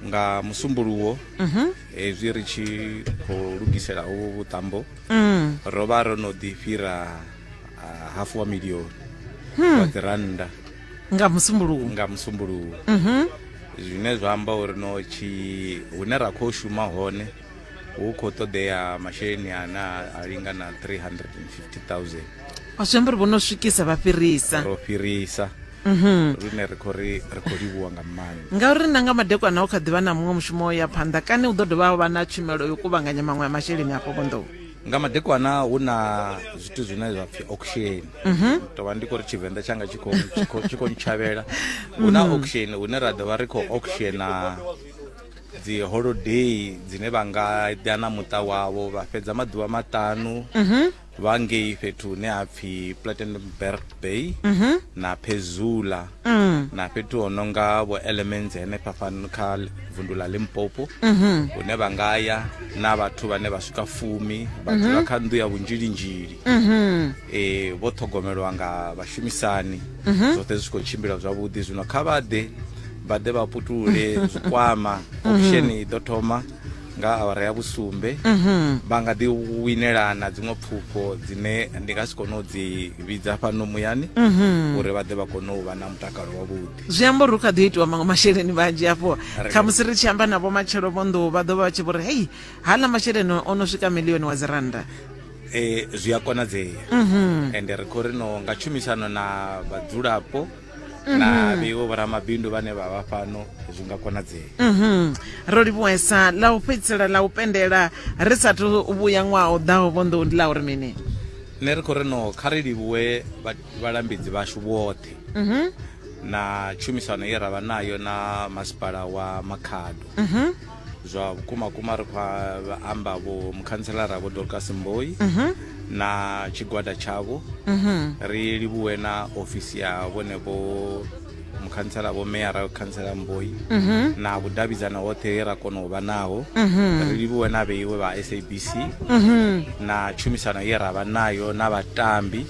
nga musumbuluwo mhm. hezwi ri tshi khou lugisela uvhu vhuṱambo mm. ro vha ro no ḓi fhira hafu wa milioni hmm. wa ḓirannda nga musumbuluwo nga musumbuluwo mhm. zwine zwa amba uri no tshi hune ra khou shuma hone hu khou ṱoḓea masheleni ane a a linga na 350000 o zwi amba uri vho no swikisa vha fhirisa ro fhirisa lune ri khou ri ri khou livhuwa nga maanḓa ngauri na nga madekwana hu kha ḓivha na muṅwe mushumo o ya phanḓa kani hu ḓo dovha ha vha na tshumelo yo kuvhanganya maṅwe a masheleni afho vhonḓou nga madekwana hu na zwithu zwine zwa pfi auction tovha ndi khou ri tshivenḓa tshanga tshi khou- tshi khou- tshi khou ntshavhela hu na auction hune ra ḓovha ri khou auctiona dzi holiday dzine vha nga ḓa na muṱa wavho vha fhedza maḓuvha maṱanu mhm. vha ngei fhethu hune ha pfhi platenberg bay mhm. na pezula mm. na fhethu ho no nga vho elements henefha fano kha vundu ḽa limpopo mhm. hune vha nga ya na vhathu vhane vha swika fumi vha dzula kha nnḓu ya vhunzhilinzhili um e, vho ṱhogomelwa nga vhashumisani zwoṱhe zwi tshi khou tshimbila zwavhuḓi zwino kha vha ḓe vha ḓe vha putule zwikwama mhm. option i ḓo thoma nga awara ya vhusumbe mhm. vha nga ḓi winelana dziṅwe pfufho dzine ndi nga si kone u dzi vhidza fhano muyani mhm. uri vha ḓe vha kone u vha na mutakalo wavhuḓi zwi amba uri hu kha ḓi itiwa maṅwe masheleni vhanzhi afho khamusi ri tshi amba navho matshelo vho nḓou vha ḓo vha vha tshi vho ri hei hala masheleni o no swika milioni wa dzirannda um zwi a konadzea ende ri khou ri no nga tshumisano na vhadzulapo Mhm. na vheiwo vhoramabindu vhane vha vha fhano zwi nga konadzea mhm. ro livhuwesa ḽa u fhedzisela ḽa u pendela ri sathu vhuya ṅwaha u ḓaho vhonḓou ndi ḽa uri mini nṋe ri khou ri no kha ri livhuwe vhalambedzi vhashu vhoṱhe mhm. na tshumisano ye ra vha nayo na masipala wa makhado zwa vhukuma kuma ri khou amba vho mukhantselara vho dorcas mboi mhm. na tshigwada tshavho mhm. ri livhuwe na ofisi ya vhone vho mukhantsela vho meyara khantsela mboi mhm. na vhudavhidzano hoṱhe he ra kona u vha naho ri livhuwe na vheiwe vha sabc na tshumisano ye ra vha nayo na vhatambi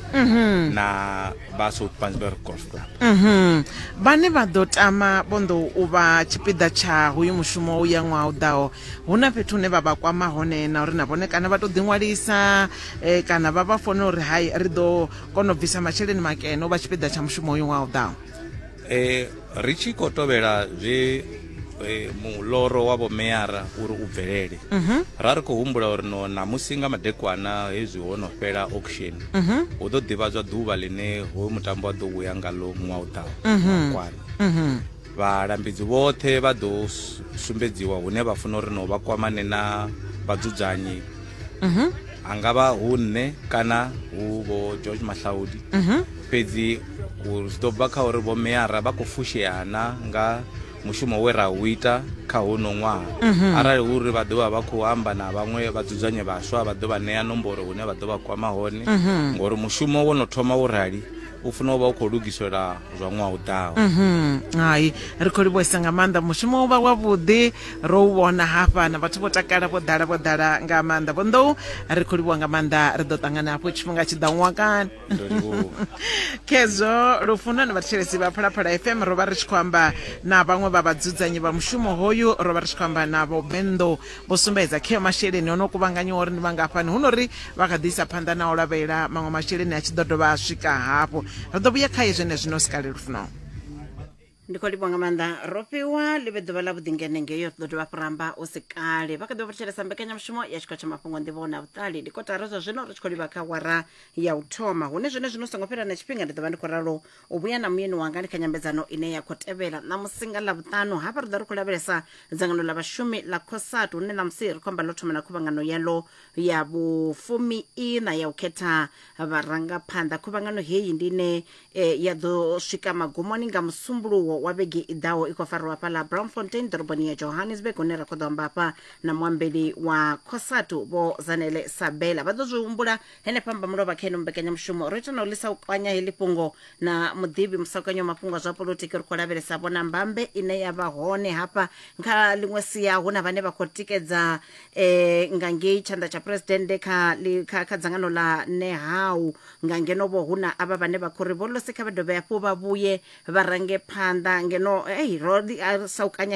na vha south pansberg gospel mhm. vhane vha ḓo tama vhondo u vha tshipiḓa tsha hoyu mushumo u ya ṅwaha u ḓaho hu na fhethu hune vha vha kwama hone na uri na vhone kana vha tou ḓiṅwalisa um kana vha vha fone uri hai ri ḓo kona u bvisa masheleni makene u vha tshipiḓa tsha mushumo uyu ṅwaha u ḓaho e, ri tshi khou tovhela zwe e, muloro wa vhomeara uri u bvelele mm -hmm. ra ri khou humbula uri no ṋamusi nga madekwana hezwi ho no fhela auction mm -hmm. hu ḓo ḓivhadzwa ḓuvha ḽine hoyu mutambo wa ḓo vhuya ngalo ṅwaha u ḓaho mm -hmm. kwana mm -hmm. vhalambedzi vhoṱhe vha ḓo sumbedziwa hune vha funa uri no vha kwamane na vhadzudzanyi mm -hmm. angavha hu nṋe kana hu vho george mahlaudi mm -hmm. fhedzi u zwi ḓo bva kha uri vhomeara vha khou fushea na nga mushumo we ra u ita kha hono ṅwaha mhm. arali hu uri vha ḓovha vha khou amba na vhaṅwe vha dzudzanye vhaswa vha ḓo vha ṋea nomboro hune vha ḓo vha kwama hone mhm. ngori mushumo wo no thoma wo rali u funa u vha u khou lugisela zwa ṅwaha u ḓaho mhm. hai ri khou livhuesa nga maanḓa mushumo u vha wavhuḓi ro u vhona hafha na vhathu vho takala vho ḓala vho ḓala nga maanḓa vho nḓou ri khou livhuwa nga maanḓa ri ḓo ṱangana hafho tshifhinga tshi ḓa ṅwakani ndo livhuwa khezwo lufuno ni vhathetshelesi vha phalaphala fm ro vha ri tshi khou amba na vhaṅwe vha vhadzudzanyi vha mushumo hoyu ro vha ri tshi khou amba na vho benḓo vho sumbedza kheo masheleni o no kuvhanganyiwa uri ndi mangafhani hu no ri vha kha ḓi isa phanḓa na u lavhelela maṅwe masheleni a tshi ḓo dovha a swika hafhu ri ḓo vhuya khaye zwenezwino sikale lufuno ndi khou livhuwa nga maanḓa rofhiwa ḽi vhe ḓuvha ḽa vhuḓingene ngeyo ḓo dovha fhira amba u si kale vha kha ḓi vha fhetshelesa mbekanyamushumo ya tshikho tsha mafhungo nḓivho na vhuṱali ndi kotara zwa zwino ri tshi khou livha kha wara ya u thoma hune zwine zwino songo fhela na tshifhinga ndi ḓo vha ndi khou ralo u vhuya na muyeni wanga ndi kha nyambedzano ine ya khou tevhela ṋamusi nga ḽa vhuṱanu hafha ri ḓo ri khou lavhelesa dzangano ḽa vhashumi ḽa cosat hune ṋamusi ri khou amba ḽo thoma na khuvhangano yalo ya vhufumi ina ya u khetha vharangaphanḓa khuvhangano heyi ndi ine e ya ḓo swika magumoni nga musumbuluwo wa vhege i ḓaho i khou farwa hafha ḽa brownfontein ḓoroboni ya johannesburg hune ra khou ḓo amba hafha na muambeli wa cosatu vho zanele sabela vha ḓo zwi humbula henefha mba mulovha kha ino mbekanyamushumo ro ita na u lisa u kwanya heḽi fhungo na muḓivhi musakanyo wa mafhungo a zwa polotiki ri khou lavhelesa vhona mbambe ine ya vha hone hafha kha ḽiṅwe sia hu na vhane vha khou tikedza eh, nga ngei tshanḓa tsha phuresidennde kha, li- kha, kha dzangano ḽa nehau Nga ngeno-vho hu na avha vhane vha khou ri vho lose kha vha dovhe hafhu vha vhuye vha range phanḓa ngeno, hei, ro ḓi a saukanya.